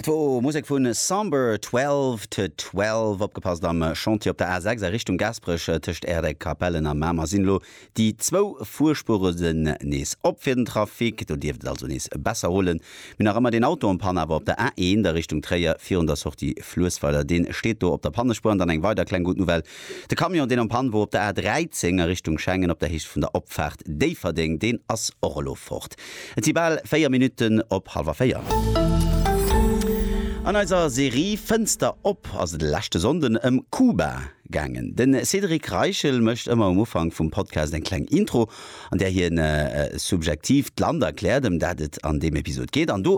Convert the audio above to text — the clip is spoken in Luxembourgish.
Dat wor Musek vun Samber 12 to 12. Opgepasst am Chantier op der A6 a Richtung Gaasperech, tëscht Aerdëck, Capellen a Mamer sinn elo déi zwou Fuerspueren nees op fir den Trafic. Do dierft et also nees besser rullen. Mir nach ëmmer deen Auto en panne awer op der A1 a Richtung Tréier virun der Sortie Fluessweiler. Dee steet do op der Pannespuer. An dann eng weider kleng gutt Nouvelle De Camion, deen am Pann wor op der A 13 a Richtung Schengen op der Héicht vun der Opfaart Déifferdeng, deen ass och elo fort. Et si bal 4 Minutten op hallwer 4. An eiser Serie Fënster op ass et e leschte Sonnden ëm Kuba gaangen. De Cédric Reichel mécht ëmmer um Ufank vum Podcast eng kleng Intro, an där hien subjektiv d'Land erkläert, ëm dat et an deem Episod geet. An do